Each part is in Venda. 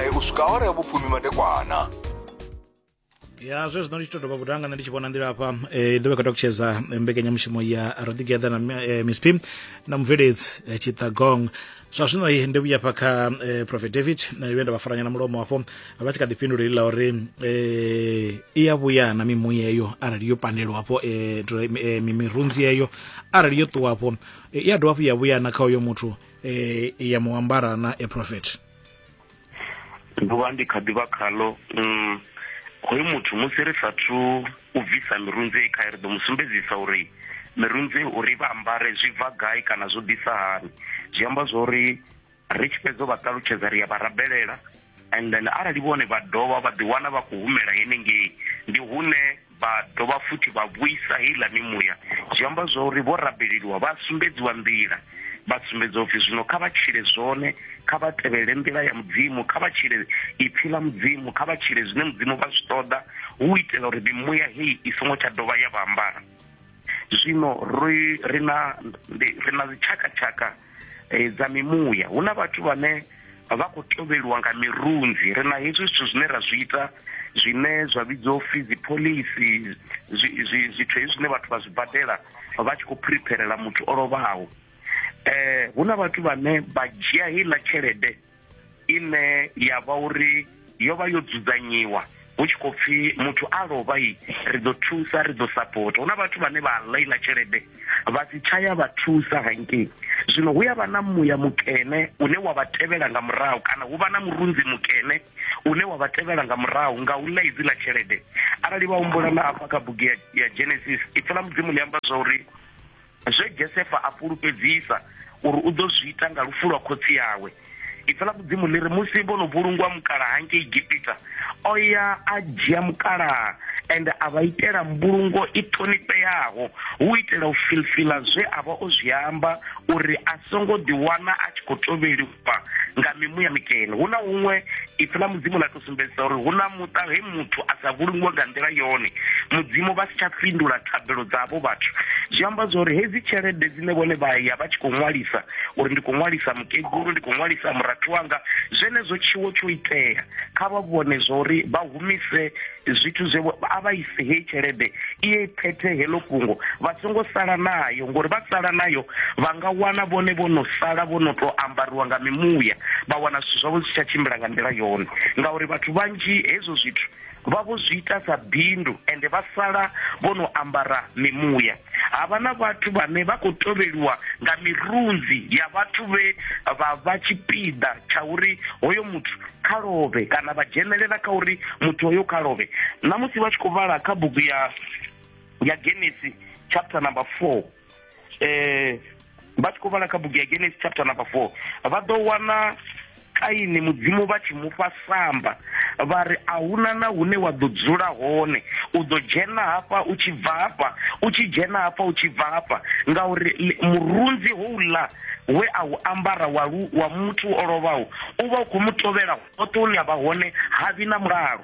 eh, u swika awara ya vhufumi madekwana ya zwe zwino ndi tshi to dovha vhuḓa nga nṋe ndi tshi vhona nḓila hafha eh, i ḓovha kha ṱalutshedza eh, mbekanyamushumo ya ro together na mi- eh, miss pim na mubveledzi eh, tshiṱagong zwa zwino eh, ndi vhuya hafha kha eh, prophet david na vhuya nda vha faranya na mulomo hafho vha tshi kha ḓi fhindula ila uri eh, i ya vhuya na mimuya eyo arali yo pandelwa hafho eh, dro- eh, mi- mirunzi eyo arali yo ṱuwa hafho eh, i ya dovha hafhu ya vhuya na kha uyo muthu eh, ya muambara na a prophet ḓuvha ndi kha ḓivha khalo um hoyu muthu musi ri sathu u bvisa mirunzei khae ri ḓo mu sumbedzisa uri mirunzei uri vha ambare zwi bva gai kana zwo ḓisa hani zwi amba zwa uri ri tshi fhedza vha ṱalutshedza ri ya vha rabelela and then arali vhone vha dovha vha ḓiwana vha khou humela henengei ndi hune Vha dovha futhi vha vhuisa heiḽa mimuya. Zwi amba zwa uri vho rabeleliwa vha a sumbedziwa nḓila. Vha sumbedzwa upfi zwino kha vha tshile zwone, kha vha tevhelele nḓila ya Mudzimu, kha vha tshile Ipfi ḽa Mudzimu, kha vha tshile zwine Mudzimu vha zwi ṱoḓa, hu u itela uri mimuya hei i songo tsha dovha ya vha ambara. Zwino ri, ri na, ndi, ri na dzitshakatshaka eh, dza mimuya. Hu na vhathu vhane vha khou tovheliwa nga mirunzi. Ri na hezwi zwithu zwine ra zwi ita zwine zwa vhidzwa u pfi dzipholisi, zwi, zwi, zwithu hezwi zwine vhathu vha zwi badela vha tshi khou phiripherela muthu o lovhaho. Eh, hu na vhathu vhane vha dzhia heiḽa tshelede ine ya vha uri yo vha yo dzudzanyiwa hu tshi khou pfhi muthu a lovha i ri ḓo thusa ri ḓo sapota hu na vhathu vhane vha ḽa iḽa tshelede vha si tshaya vha thusa hangei zwino hu ya vha na muya mukene une wa vha tevhela nga murahu kana hu vha na murunzi mukene une wa vha tevhela nga murahu nga u ḽa idzi ḽa tshelede arali vha humbula na afha kha bugu ya genesis ipfi ḽa mudzimu ḽi amba zwa uri Zwe Gesefa a fhulufhedzisa uri u ḓo zwi ita nga lufu lwa khotsi awe. Ipfi ḽa Mudzimu ḽi ri, Musi vho no vhulungwa mukalaha ngei Egipita, o ya a dzhia mukalaha ende a vha itela mbulungo i ṱhonifheaho hu u itela u filfila zwe a vha o zwi amba uri a songo ḓiwana a tshi khou tovheliwa vha nga mimuya mikene hu na huṅwe ipfi ḽa mudzimu ḽa tou sumbedzisa uri hu na muṱa he muthu a sa vhulungiwe nga nḓila yone mudzimu vha si tsha fhindula thabelo dza havho vhathu zwi amba zwa uri hedzi tshelede dzine vhone vha ya vha tshi khou ṅwalisa uri ndi khou ṅwalisa mukegulu ndi khou ṅwalisa murathu wanga zwenezwo tshiwo tsho itea kha vha vhone zwa uri vha humise zwithu zwe a vha ise heyi tshelede iye phethe heḽo fhungo vha songo sala nayo ngori vha sala nayo vha nga wana vhone vho no sala vho no tou ambariwa nga mimuya vha wana zwithu zwavho zwi tsha tshimbila nga nḓila yone ngauri vhathu vhanzhi hezwo zwithu vha vho zwi ita sa bindu ende vha sala vho no ambara mimuya Ha vha na vhathu vhane vha khou tovheliwa nga mirunzi ya vhathu vhe vha vha tshipiḓa tsha uri hoyo muthu kha lovhe kana vha dzhenelela kha uri muthu hoyo kha lovhe. Na musi vha tshi khou vhala kha bugu ya ya Genesi chapter number 4 eh vha tshi khou vhala kha bugu ya genesis chapter number four vha ḓo wana kaini mudzimu vha tshi mufha samba vha ri a huna na hune wa ḓo dzula hone u ḓo dzhena hafha u tshi bva hafha u tshi dzhena hafha u tshi bva hafha ngauri murunzi houḽa we a u ambara wa, lu, wa muthu o lovhaho u vha u khou mu tovhela hoṱhe hune a vha hone ha vhi na mulalo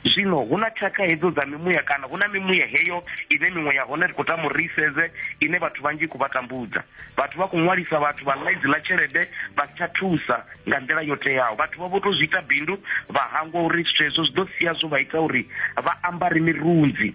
zwino hu na tshakha hedzo dza mimuya kana hu na mimuya heyo ine miṅwe ya hone ri khou tama uri ri isedze ine vhathu vhanzhi i khou vha tambudza vhathu vha khou ṅwalisa vhathu vha ḽa idzi ḽa tshelede vha si tsha thusa nga nḓila yo teaho vhathu vha vho tou zwi ita bindu vha hangwa uri zwithu hezwo zwi ḓo sia zwo vha ita uri vha ambare mirunzi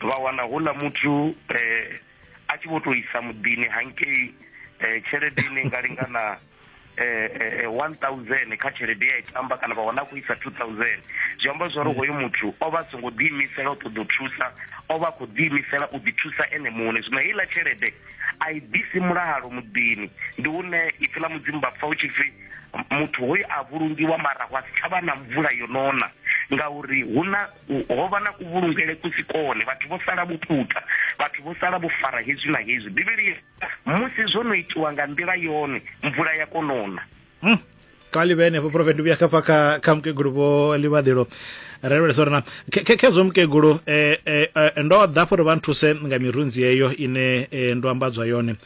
vha wana hula muthu um a tshi vho to isa muḓini hangei um tshelede ine nga lingana um one thousand kha tshelede ya i tamba kana vha wana a khou isa two thousand zwi amba zwa uri hoyo muthu o vha a songo ḓiimisela u ṱoḓa u thusa o vha a khou ḓiimisela u ḓithusa ene muṋe zwino heiḽa tshelede a i ḓisi mulalo muḓini ndi hune ipfi ḽa mudzimu vha pfa u tshi pfi muthu hoyu a vhulungiwa mara wa si tsha vha na mvula yo nona ngauri hu na Ho vha na kuvhulungele ku si kone, vhathu vho sala vho puta, vhathu vho sala vho fara hezwi na hezwi. Bivhili i ri, Musi zwo no itiwa nga nḓila yone, mvula ya konona. Hmm. xa libe henefho profeti ndi vhuya khafha kha kha mukegulu vho ḽivhaḓelo ra lavhelesa uri na khezwo mukegulu um eh, eh, eh, ndo ḓa fho uri vha nthuse nga mirunzi yeyo ine ndo ambadzwa yone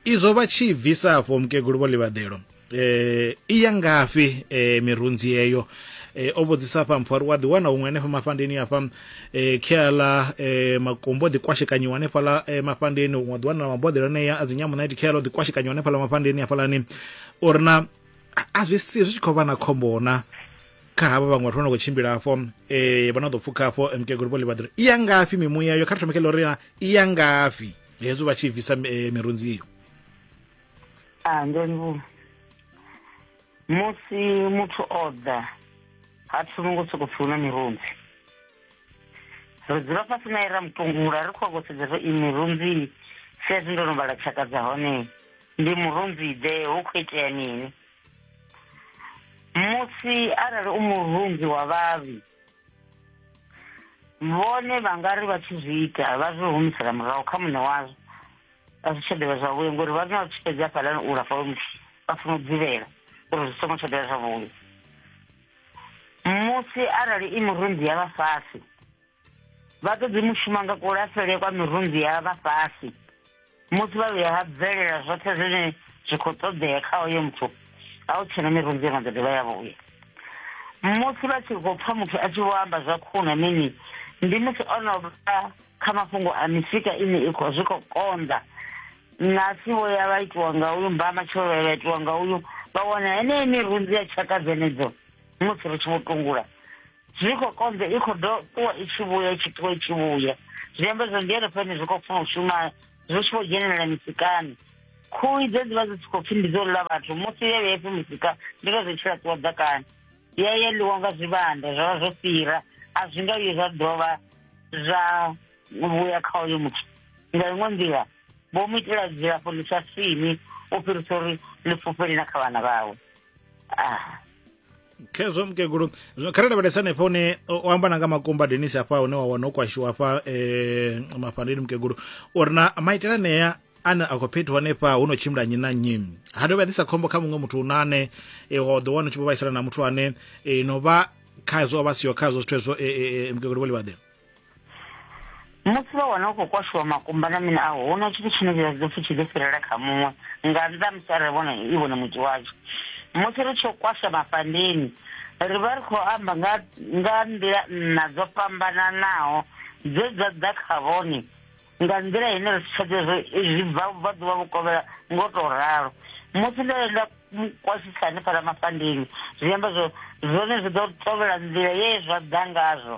Izwo vha tshi bvisa afho mukegulu vho ḽivhaḓelo eh i ya ngafhi eh mirunzi yeyo eh o vhudzisa afha mpho ri wa ḓi wana huṅwe hanefha mafhandeni afha eh khiala eh makumbo ḓi kwashekanyiwa hanefha la eh, mafhandeni huṅwe ḓi wana maboḓelo aneya a dzi nyamunaithi khiala ḓi kwashekanyiwa hanefha la mafhandeni afha lani uri na a zwi si zwi tshi khou vha na khombo na kha havha vhaṅwe vhathu vha no khou tshimbila afho eh vha no ḓo pfukha afho mukegulu vho ḽivhaḓelo i ya ngafhi mimuya yo kha ri thome kha ḽo ri i ya ngafhi hezwo vha tshi bvisa eh, mirunzi iyo a ndongu musi muthu o ḓa ha thomi ngo sokou pfi hu na mirunzi ri dzula fhasi naye ra mutungula ri khou a kosedza zwa i mirunzi sezwi ndo no vhala tshaka dza hone ndi murunzi ḓe hu khou itea mini musi arali u murunzi wa vhavhi vhone vha nga ri vha tshi zwi ita vha zwi humisela murahu kha muṋe wazwo a zwi tsha dovha zwavhuya ngori vha na tshi fhedzi hafhaḽani u lafha muthu vha funa u dzivhela uri zwi songo tsha dovha zwavhuya musi arali i mirunzi ya vhafhasi vha ṱoḓi mushuma nga kulafhele kwa mirunzi ya vhafhasi musi vha vhuya ha bvelela zwoṱhe zwine zwi khou ṱoḓea kha oyo muthu a u tshena mirunzi ino ḓo dovha ya vhuya musi vha tshi khou pfa muthu a tshi vho amba zwa khuna mini ndi musi o no vha kha mafhungo a misika ine i khou zwi khou konḓa na si vho ya vha itiwa nga uyu mba matshelo vha vha itiwa nga uyu vha wana heneyo mirunzi ya tshaka dzenedzo musi ri tshi vho tungula zwi khou konḓa i khou do ṱuwa i tshi vhuya i tshi ṱuwa i tshi vhuya zwi amba zwa ndi henefhani zwi khou funa u shuma zwi tshi khou dzhenelela misikani khuhu idzo dzi vha dzi si khou pfhi ndi dzo ḽa vhathu musi ye vhe pfhi musika ndi vha zwi tshi laṱiwa ḓakani ya ya ḽiwa nga zwivhanda zwa vha zwo fhira a zwi nga vhuye zwa dovha zwa vhuya kha uyo muthu nga iṅwe nḓila vho mu itela dzilafho ḽi sa fini u fhirisa uri ḽi fhufhele na kha vhana vhawe ah khezwo mukegulu zwino kha ri lavhelesa hanefha hune o amba na nga makumba denis hafha hune wa wana o kwashiwa hafha um mafhandeni mukegulu uri na maitele anea ane a khou phethiwa hanefha hu no tshimbila nnyi na nnyi ha dovha ḓisa khombo kha muṅwe muthu una ane e, wa ḓo wana u tshi vho vhaisala na muthu ane e, no vha khazwo o vha siho khazwo zwithu hezwo e, e, e, mukegulu vho livhaḓela musi vha wana u khou kwashiwa makumba na mini aho huna tshithu tshine vha ḓo pfhi tshi ḓo fhirela kha muṅwe nga nnḓa musi arali vhona i vhone muti watsho musi ri tsho kwasha mafhandeni ri vha ri khou amba nga nga nḓila nna dzo fhambananaho dze dza ḓa kha vhone nga nḓila ine ri tsha ḓivha zwi bva vha ḓuvha vho kovhela ngo to ralo musi ndo enda kwasisa hanefhala mafhandeni zwi amba zwo zwone zwi ḓo tovhela nḓila ye zwa ḓa ngazwo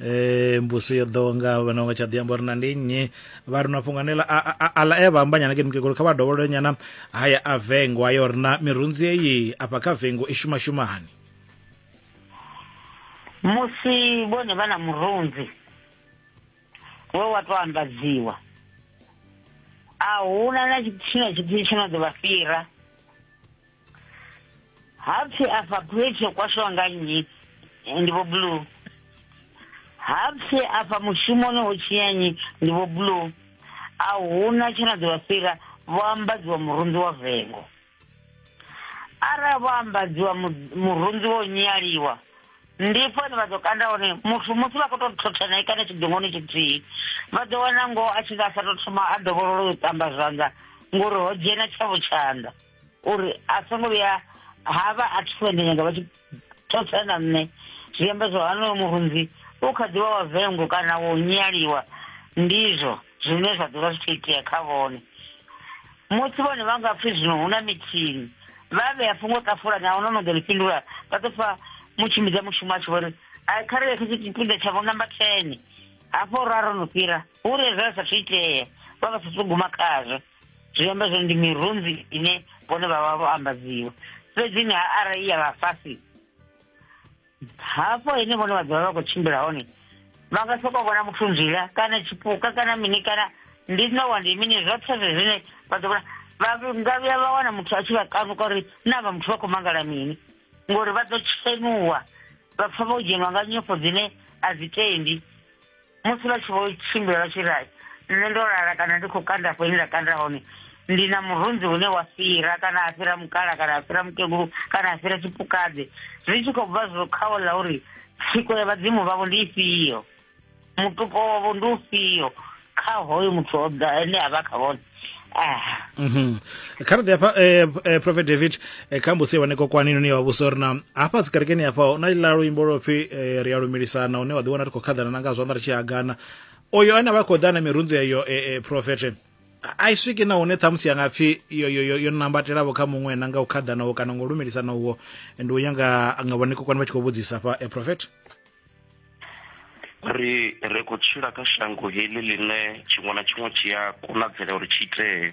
eh mbusi yo ḓo nga vhana nga tsha ḓi amba uri na ndi nnyi vha ri na fhungo anela a la e vha amba nyana ke mukegulu kha vha dovholole nyana haya a vengo ayo ri na mirunzi eyi afha kha vengo i shuma shumani musi vhone vha na murunzi we wa to ambadziwa a huna na tshithu tshine tshithu tshino ḓo vha fhira hapfi afha phwetshi yo kwashiwa nga nnyi ndi vho blue hapfi afha mushumoni ho tshinya nnyi ndi vho blue a huna tshe na ḓivha fhira vho ambadziwa murunzi wa vengo arali vho ambadziwa murunzi wo nyaliwa ndi fani vha ḓo kanda hone muthu musi vha khou tou thothana kana tshidongoni tshithihi vha ḓo wana ngoho a tshi nga sa tou thoma a dovholola u ṱamba zwanḓa ngori ho dzhena tshavho tshanḓa uri a songo vhuya ha vha a thi fhende nyanga vha tshi thotsa na nṋe zwi amba zwa hanoyo murunzi u kha ḓivha wa vengo kana wo nyaliwa ndizwo zwine zwa ḓovha zwi tshi itea kha vhone musi vhone vha nga pfhi zwino hu na mithini vha vhea fhungo ṱafulani a huna no ḓo ḽi fhindula vha ḓo pfa mutshimbidza mushumo a tshi vho ri a kha ri lekhe tshipiḓa tsha vho namba ten hafho ra ro no fhira hu re zwa sa thu itea vha vha sa thu guma khazwo zwi amba zwone ndi mirunzi ine vhone vha vha vho ambadziwa fhedzi ni arali ya vha fhasi hafho ine vhone vha ḓovha vha khou tshimbila hone vha nga soko vhona muthu nzila kana tshipuka kana mini kana ndi nowa ndi mini zwoṱhe zwe zwine vha ḓo vhona vha nga vhuya vha wana muthu a tshi vha kanuka uri na vha muthu vha khou mangala mini ngori vha ḓo tshenuwa vha pfa vho dzhenwa nga nyofho dzine a dzi tendi musi vha tshi vho tshimbila vha tshi ri nṋe ndo lala kana ndi khou kanda afho ine nda kanda hone ndi na murunzi une wa fhira kana a fhira mukala kana a fhira mukegulu kana a fhira tshipukadze zwi tshi khou bva zwo khawo ḽa uri tsiko ya vhadzimu vhavho ndi ifhio mutupo wavho ndi ufhio kha hoyo muthu ene a vha kha vhone Mhm. kha ri ḓi hafha eh, eh, prophet david eh, kha mbusi wane kokwani noni wa vhusa uri na hafha dzikerekeni hafha hu na ḽa luimbo lwo pfhi eh, ri a lumilisana hune wa ḓi wana ri khou khaḓana na nga zwanḓa ri tshi hagana oyo ane a vha khou ḓa na mirunzi eyo eh, eh, prophet a- a i swiki na hune ṱhamusi ya nga pfhi yo, yo, yo, yo nambatelaho kha muṅwe na nga u khaḓanaho kana nga u lumilisana uho ndi u ya nga nga vhone kokwani vha tshi khou vhudzisa hafha eh, prophet ri ri khou tshila kha shango heḽi ḽine tshiṅwe na tshiṅwe tshi a konadzela uri tshi itee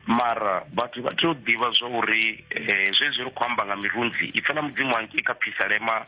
mara vhathu vha tea u ḓivha zwa uri eh, zwezwi ri khou amba nga mirunzi ipfa na mudzimu wangei kha phisalema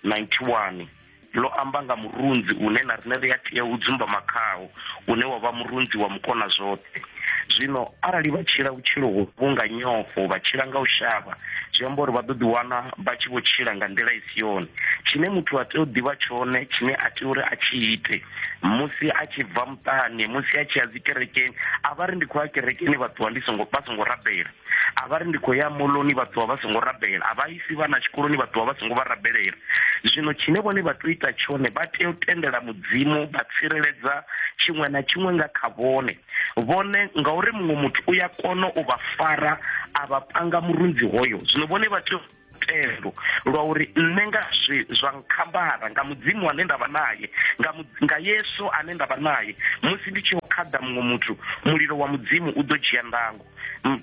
91 ḽo amba nga murunzi une na rine ri a tea u dzumbama khawo une wa vha murunzi wa mukona zwoṱhe zwino arali vha tshila vhutshilo hovhu nga nyofho vha tshila nga u shavha zwi amba uri vha ḓo ḓiwana vha tshi vho tshila nga nḓila i si yone tshine muthu a tea u ḓivha tshone tshine a tea uri a tshi ite musi a tshi bva muṱani musi a tshi ya dzikerekeni a vha ri ndi khou ya kerekeni vha ṱuwa ndi songo vha songo rabela a vha ri ndi khou ya moloni vha ṱuwa vha songo rabela a vha isi vhana tshikoloni vha ṱuwa vha songo vha rabelela zwino tshine vhone vha tou ita tshone vha tea u tendela mudzimu vha tsireledza tshiṅwe na tshiṅwe nga kha vhone vhone ngauri muṅwe muthu u ya kona u vha fara a vha panga murunzi hoyo zwino vhone vha tea thendo lwa uri nṋe nga zwi zwa nkhambara nga mudzimu ane ndavha naye nga nga yesu ane ndavha naye musi ndi tshi khaḓa muṅwe muthu mulilo wa mudzimu u ḓo dzhia ndango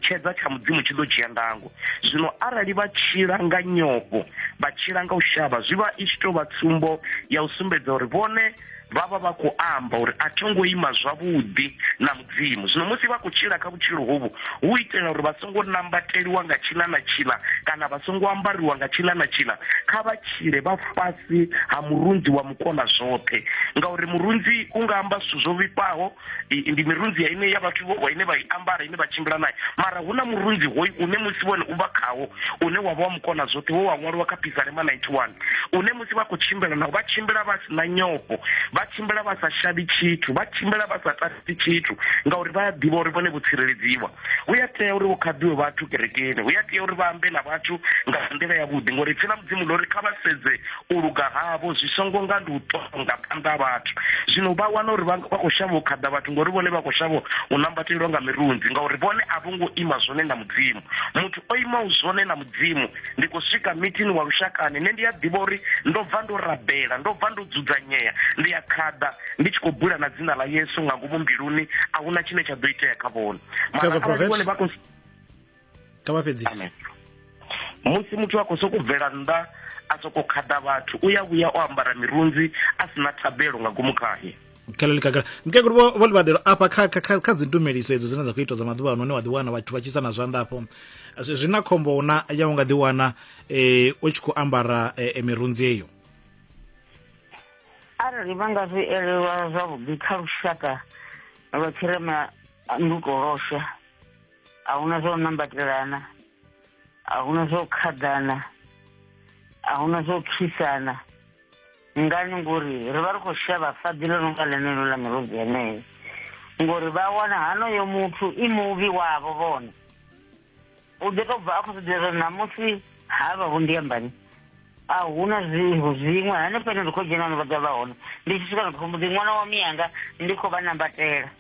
tshedza tsha mudzimu tshi ḓo dzhia ndango zwino arali vha tshila nga nyofho vha tshila nga u shavha zwi vha i tshi tou vha tsumbo ya u sumbedza uri vhone vha vha vha khou amba uri a tho ngo ima zwavhuḓi na mudzimu zwino musi vha khou tshila kha vhutshilo hovhu hu itela uri vha songo nambateliwa nga tshila na tshila kana vha songo ambariwa nga tshila na tshila kha vha tshile vha fhasi ha murunzi wa mukona zwoṱhe ngauri murunzi u nga amba zwithu zwo vhifhaho ndi mirunzi ya ine ya vhathu vho ine vha i ambara ine vha tshimbila naye mara hu na murunzi hoyu une musi vhone u vha khawo une wa vha wa mukona zwoṱhe wo wa ṅwaliwa kha pisarema 91 une musi vha khou tshimbila nao vha tshimbila vha si na nyofho vha tshimbila vha sa shavhi tshithu vha tshimbila vha sa tasi tshithu ngauri vha a ḓivha uri vhone vho tsireledziwa hu ya tea uri vho khaḓiwe vhathu kerekeni hu ya tea uri vha ambe na vhathu nga nḓila yavhuḓi ngori pfhi ḽa mudzimu ḽo ri kha vha sedze u luga havho zwi songo nga ndi u tonga phanḓa vhathu zwino vha wana uri vha khou shavha u khaḓa vhathu ngori vhone vha khou shavha u nambatelwa nga mirunzi ngauri vhone a vho ngo ima zwone na mudzimu muthu o imaho zwone na mudzimu ndi khou swika mithini wa lushakani nṋe ndi a ḓivha uri ndo bva ndo rabela ndo bva ndo dzudzanyea ndi a khaḓa ndi tshi khou bula na dzina ḽa yesu nga ngomu mbiluni a huna tshine tsha ḓo itea kha vhone mara arali vhone vha khou kha vha fhedzise musi muthu a khou sokou bvela nnḓa a sokou khaḓa vhathu u ya vhuya o ambara mirunzi a si na thabelo nga ngomu khahe khaleli kakala mukegulu vho vho livhaḓelo afha kha kha kha dzi tumeliso edzo dzine dza khou itwa dza maḓuvha ano hune wa ḓiwana vhathu vha tshisa na zwanḓa afho zwi na khombo na ya u nga ḓiwana eh u tshi khou ambara eh, eh, mirunzi eyo arali vha nga zwi elelwa zwavhuḓi kha lushaka lwa tshirema ndukolosha a huna zwo nambatelana a huna zwo khaḓana a huna zwo khisana ngani ngori ri vha ri khou shavha faḓi ḽo no nga ḽeneḽo ḽa mirozi yeneyo ngori vha wana hanoyo muthu i muvhi wavho vhone u ḓo tou bva a khou zwiḓivha zwa ṋamusi ha vha vho ndiambani a huna zwiho zwiṅwe hanefha ine ndi khou dzhena no vha ḓa vha hone ndi tshi swika ndi khou mbo ḓi ṅwana wa miyanga ndi khou vha nambatela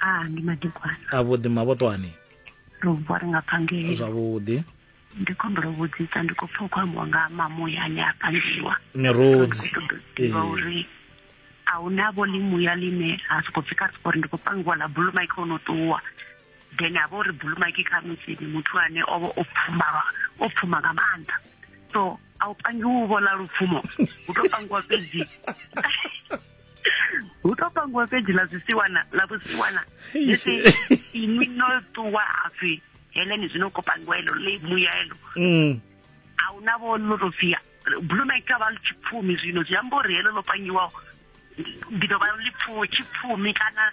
a ndi madekwana a vhuḓi mavhoṱwani ro vuwa ri nga phangeli zwavhuḓi ndi khou humbela u vhudzisa ndi khou pfa u khou ambiwa nga mamuya ane a pangiwa mirudzi ḓivha uri a hu na vho ḽimuya ḽine a sokou pfi kha sipori ndi khou pangiwa ḽa bulumaki o no ṱuwa then a vha uri bulumaki kha musi ndi muthu ane o vha o pfuma o pfuma nga maanḓa so a u pangiwi u vhola lupfumo u tou pangiwa fhedzi hu to pangiwa fhedzi ḽa zwisiwana ḽa vhusiwana musi inwi no ṱuwa hapfi heleni zwino ko pangiwa elo ḽi muya elo mm. a hu na vho ḽo to pfia blue night a vha ḽi tshipfumi zwino zwi amba uri heḽo ḽo pangiwaho ndi ḓo vha ḽi tshipfumi kana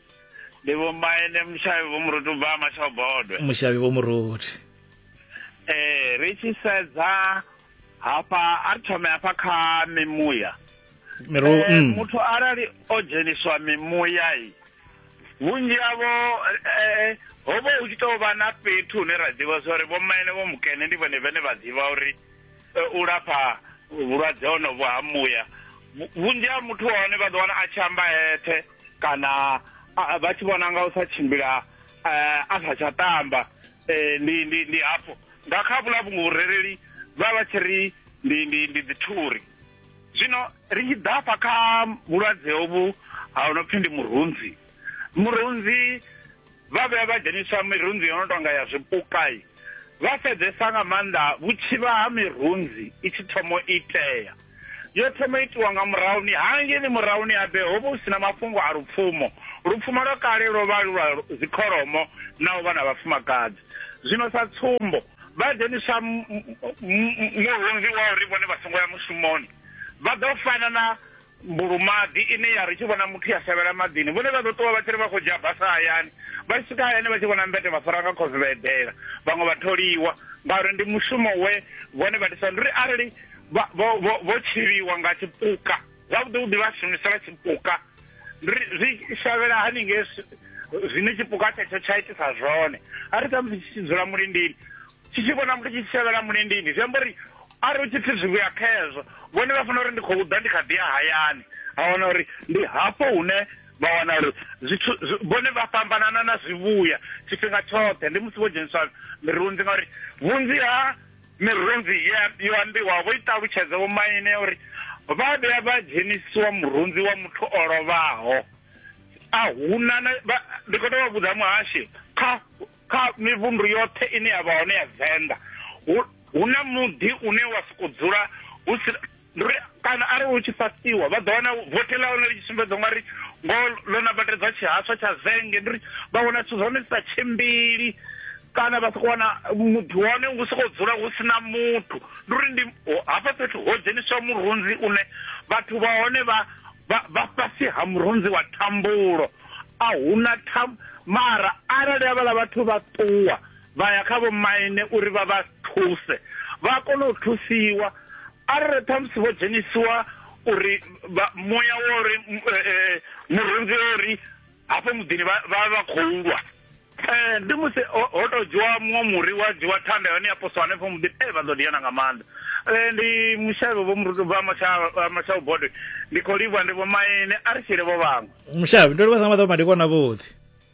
ndi vho mbaene mushavhi vho muruti u bva mashobodwe mushavhi vho muruti eh ri tshi sedza hafha a ri thome hafha kha mimuya miru eh, mm. muthu arali o dzheniswa mimuya i vhunzhi havho eh, ho vha hu tshi tou vha na fhethu hune ra ḓivha zwa uri vhomaene vho mukene ndi vhone vhene vha ḓivha uri eh, u lafha vhulwadze honovho ha muya vhunzhi ha muthu wa hone vha ḓo wana a tshi amba eṱhe kana vha tshi vhona nga u sa tshimbila eh, a sa tsha tamba eh, ndi ndi ndi hafho nga kha vhula vhungo vhurereli vha vha tshi ri ndi ndi ndi dzithuri zwino ri tshi ḓafha kha vhulwadze hovhu ha no pfi ndi murunzi murunzi vha vhuya vha dzheniswa mirunzi yo no tonga ya zwipukai vha sedzesa nga maanḓa vhutshivha ha mirunzi i tshi thomo itea Yo thoma u itiwa nga murahuni ha ngeni murahuni ha Bee ho vha hu si na mafhungo a lupfumo. Lupfumo lwa kale lwo vha lu lwa dzikholomo na u vha na vhafumakadzi. Zwino sa tsumbo, vha dzheniswa murunzi wa uri vhone vha songo ya mushumoni. Vha ḓo fana na mbulumaḓi ine ya ri tshi vhona muthu ya shavhela maḓini. Vhone vha ḓo ṱuwa vha tshi ri vha khou dzhia basa hayani. Vha tshi swika hayani vha tshi vhona mbete vha fara nga khosi vha eḓela. Vhaṅwe vha tholiwa ngauri ndi mushumo we vhone vha ḓisa. Ndi uri arali vha vho vho vho tshivhiwa nga tshipuka zwavhuḓi vhuḓi vha shumisela tshipuka ri zwi shavhela haningei zwine tshipuka tshetsho tsha itisa zwone a ri khamusi tshi tshi dzula mulindini tshi tshi vhona muthu tshi tshi shavhela mulindini zwi amba uri a ri u tshi pfi zwi vhuya khezwo vhone vha fanela uri ndi khou ḓa ndi kha ḓi ya hayani a wana uri ndi hafho hune vha wana uri zwithu vhone vha fhambanana na zwivhuya tshifhinga tshoṱhe ndi musi vho dzheniswa mirunzi ngauri vhunzhi ha Mirunzi ye yo ambiwa vho i ṱalutshedza vhomaine ya uri vha vhuya vha dzhenisiwa murunzi wa muthu o lovhaho. A huna na vha ndi khou tou vha vhudza muhashi kha kha mivhundu yoṱhe ine ya vha hone ya Venḓa hu hu na muḓi une wa sokou dzula hu si ndi uri kana arali hu tshi fasiwa vha ḓo wana vothi ḽa hone ḽi tshi sumbedza ungari ngo ḽo nambatedzwa tshihaswa tsha zenge ndi uri vha wana zwithu zwa hone zwi sa tshimbili kana vha soko wana muḓi wa hone hu sokou dzula hu sina muthu ndi uri ndi hafha fhethu ho dzheniswa murunzi une vhathu vha hone vha vha fhasi ha murunzi wa thambulo a huna tham mara arali havhala vhathu vha ṱuwa Vha ya kha vhomaine uri vha vha thuse, vha kona u thusiwa. Arali ṱhamusi vho dzhenisiwa uri muya wo ri murunzi o ri hafho muḓini vha vha vha khou lwa, ndi musi ho tou dzhiwa muṅwe muri wa dzhiwa thanda ya hone ya poswa hanefho muḓini, ee vha ḓo diana nga maanḓa. Ndi Mushavhe vho Murunzi ubva ha Mashau Bodwe, ndi khou livhuwa ndi vhomaine, a ri tshile vho vhaṅwe. Mushavhe, ndo livhuwa sa nga maḓuvha madekwana avhuḓi.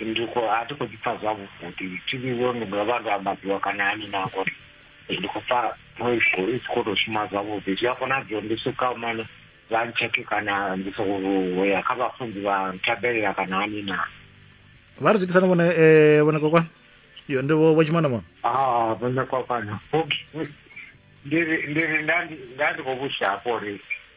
ndi khou a thi khou ḓi pfa zwavhuḓi thi vhiwe ndi nga vha ndo ambadziwa kana hani na ngori ndi khou pfa i tshi khou tou shuma zwavhuḓi zwi a konadzea ndi swika mane vha ntsheke kana ndi sokou ya kha vhafunzi vha nthabelela kana hani na vha ri zwitisana vhone eh, vhone kokwana yo ndi vho tshimana mona ah vhone kokwana ndi ndi ndi ndi khou vhusa hafho uri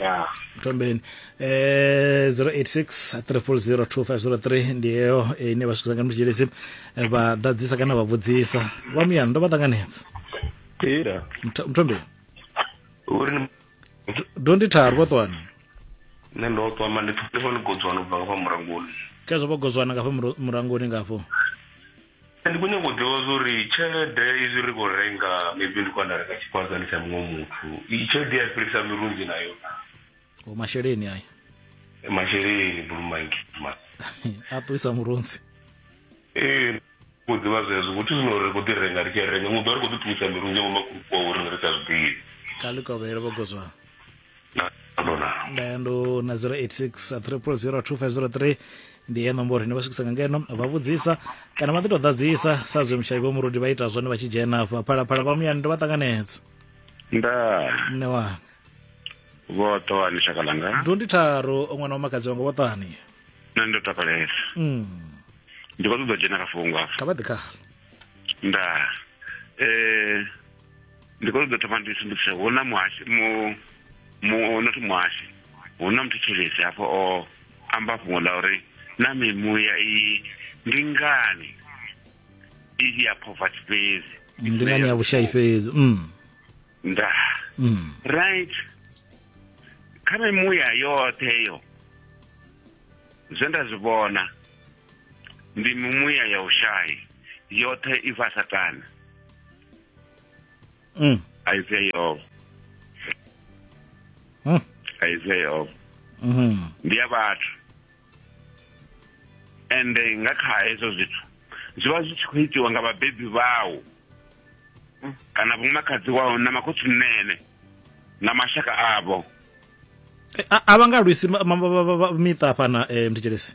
ya thomeni eh 086 300 2503 ndi yeyo eh, ine vhasukisa nga mutshilisi eh, vha ḓadzisa kana vha vhudzisa vha muyani ndo vha ṱanganedza Ira. Mtho- mthombeni Uri ni- do ndi tharu vho ṱwani nṋe ndo ṱwa ma ndi pfha ndi godzwana ubva nga fha murangoni khezwo vho gozwana nga fha muru- murangoni ngafho Ndi khou nyanga u ḓivha zwa uri tshelede izwi ri khou renga maybe ndi khou anda renga tshifhazani tsha muṅwe muthu iyi tshelede ya fhelisa mirunzi nayo o masheleni ayo masheleni bulumangi a ṱuwisa murunzi ee khou ḓivha zwezwo vhuthu zwino ri khou ḓi renga ri tshi renga muḓo ri khou ḓi ṱuwisa mirunzi ngo makhulukuwa uri ri sa zwiḓivhi kha ḽikovhelo vhogodzwana ndayando na 086 300 2503 ndi ye nomboro ine vha swikisa nga ngeno vha vhudzisa kana vha ḓi tou ḓadzisa sa zwe mushayi vho murudi vha ita zwone vha tshi dzhena afha phalaphala vha muyani ndo vha ṱanganedza nda mne wanga vhoṱoani shaka langa ndo ndi tharo ṅwana wa makadzi wanga vhoṱani nṋe ndo takalesa mm. ndi khou ṱoḓa dzhena kha fhungo afha kha vha ḓi khala nda um ndi khou ṱoḓa thoma ndi sumbedzise hu na muhashi mu mu not muhashi hu na muthetshelesi hafho o amba fhungo ḽa uri na mimuya iyi ndi ngani i ya poverty fhedzi ndi ngani ya vhushayi fhedzi mm. nda mm. right kha mimuya yoṱhe yo zwe nda zwi vhona ndi mimuya ya ushayi yoṱhe i vha satana Mm. Isaiah o. Mm. Isaiah o. Mhm. Ndi ya vhathu. Ende nga kha hezwo zwithu zwi vha zwi tshi khou itiwa nga vhabebi vhau kana vho makhadzi wao na makhotsi mnene na mashaka avho. Eh, a vha nga lwisi miṱa fhana eh, mthetshelesi.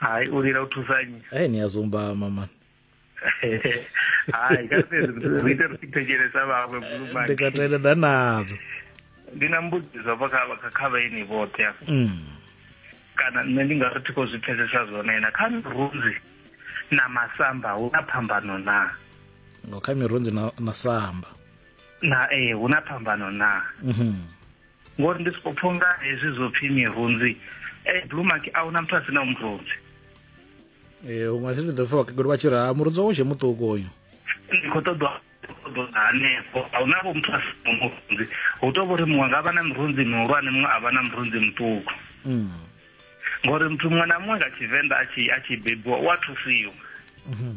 hayi u lila u thusa nnyi hey, ni a zumbama man hayi ka fhedzi ri ite ri si thetshelesa vhaṅwe ndi nga teledza nadzo ndi na mbudziso vha kha kha vhaeni vhoṱhe mm. kana nṋe ndi nga ri thi khou zwi pfesesa zwone na kha mirunzi na masamba hu na phambano na ngo kha mirunzi na, na samba na ee hu na phambano na mm -hmm. ngori ndi soko pfha unga hezwi zwo pfhi mirunzi eh, blue mark a huna muthu a si na murunzi ee eh, unga si ri ḓo pfha vhakegulu vha tshi ri ha murunzi wawo tshe muṱuku uyu ndi khou ṱoḓa hanefho a huna vho muthu a si na murunzi hu tou vho ri muṅwe nga vha na mirunzi mihulwane muṅwe a vha na murunzi muṱuku mm. ngori muthu muṅwe na muṅwe nga tshivenḓa a tshi bebiwa u a thusiwa mhm.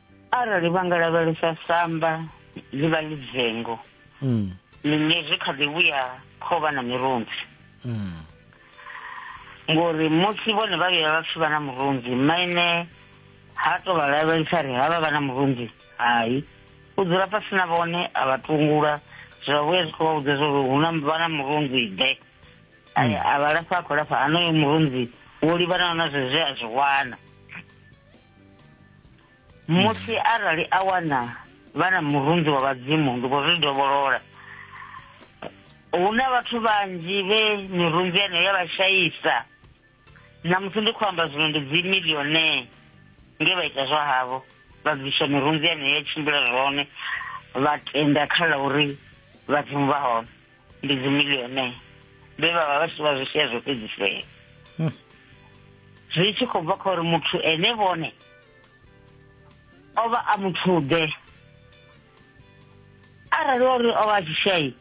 arali vha nga lavhelesa samba ḽi vha ḽi dzengo mm. ḽine zwi kha ḓi vhuya kho vha na mirunzi mm. ngori musi vhone vha vhuya vha pfhi vha na murunzi maine ha to vha lavhelesa ri ha vha vha na murunzi hai u dzula fhasi na vhone a vha tungula zwa vhuya zwi khou vha vhudza zwori hu na vha na murunzi ḓe mm. a vha lafha a khou lafha hanoyo murunzi wo livhanaho na zwezwe a zwi wana musi arali a wana vha na murunzi wa vhadzimu ndi khou zwi dovholola hu na vhathu vhanzhi vhe mirunzi yeneyo ya vha shaisa na musi ndi khou amba zwino ndi dzi millionae nge vha ita zwa havho vha bvisa mirunzi yeneyo ya tshimbila zwone vha tenda kha ḽa uri vhadzimu vha hone ndi dzimiliyone vhe vha vha vha tshi vha zwishea zwo fhedzisea hmm. zwi tshi khou bva kha uri muthu ene vhone o vha a muthuḓe arali ori o vha a tshi shai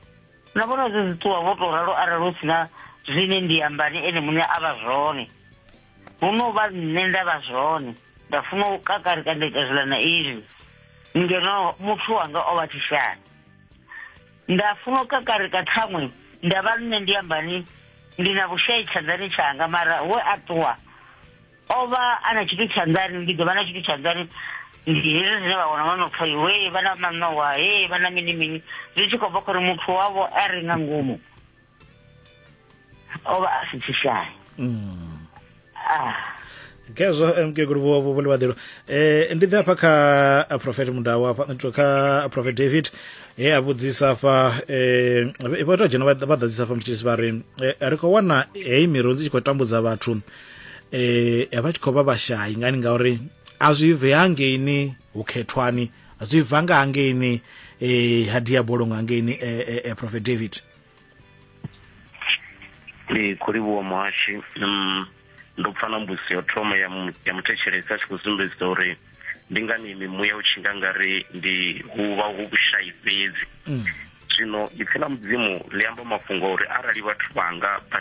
na vhona zwi zwi ṱuwa vho tou ralo arali hu si na zwine ndi ambani ene muṋe a vha zwone hu no vha nṋe nda vha zwone nda funa u kakarika nda ita zwiḽa na izwi ngeno muthu wanga o vha tshishani nda funa u kakarika ṱhaṅwe nda vha nṋe ndi ambani ndi na vhushai tshanḓani tshanga mara we a ṱuwa o vha a na tshithu tshanḓani ndi ḓo vha na tshithu tshanḓani ndi hezwi zwine vha wana vha no pfa iwe vha na maṋowa he vha na mini mini zwi tshi khou bva khori muthu wavho a ri nga ngomu o vha a si tshishaya mm. ah. ngezwo eh, mkegulu vho vho livhaḓelo eh ndi ḓe afha kha eh, prophet mudau afha eh, kha prophet david he a vhudzisa afha eh vho tou dzhena vha ḓadzisa afha mutshisi vha ri ri khou wana heyi miru dzi tshi khou tambudza vhathu eh ya vha tshi khou vha vhashayi ngani ngauri a zwi bve hangeini hu khethwani zwi bva nga hangeini eh ha diabolo nga hangeini eh prophet david ee khou livhuwa muhashi um ndo pfa na mbudziso ya thoma ya muthetshelesi a tshi khou sumbedzisa uri ndi ngani mimuya u tshi nga nga ri ndi hu vha hu vhushayi fhedzi mm. zwino ipfi ḽa mudzimu ḽi amba mafhungo uri arali vhathu vhanga vha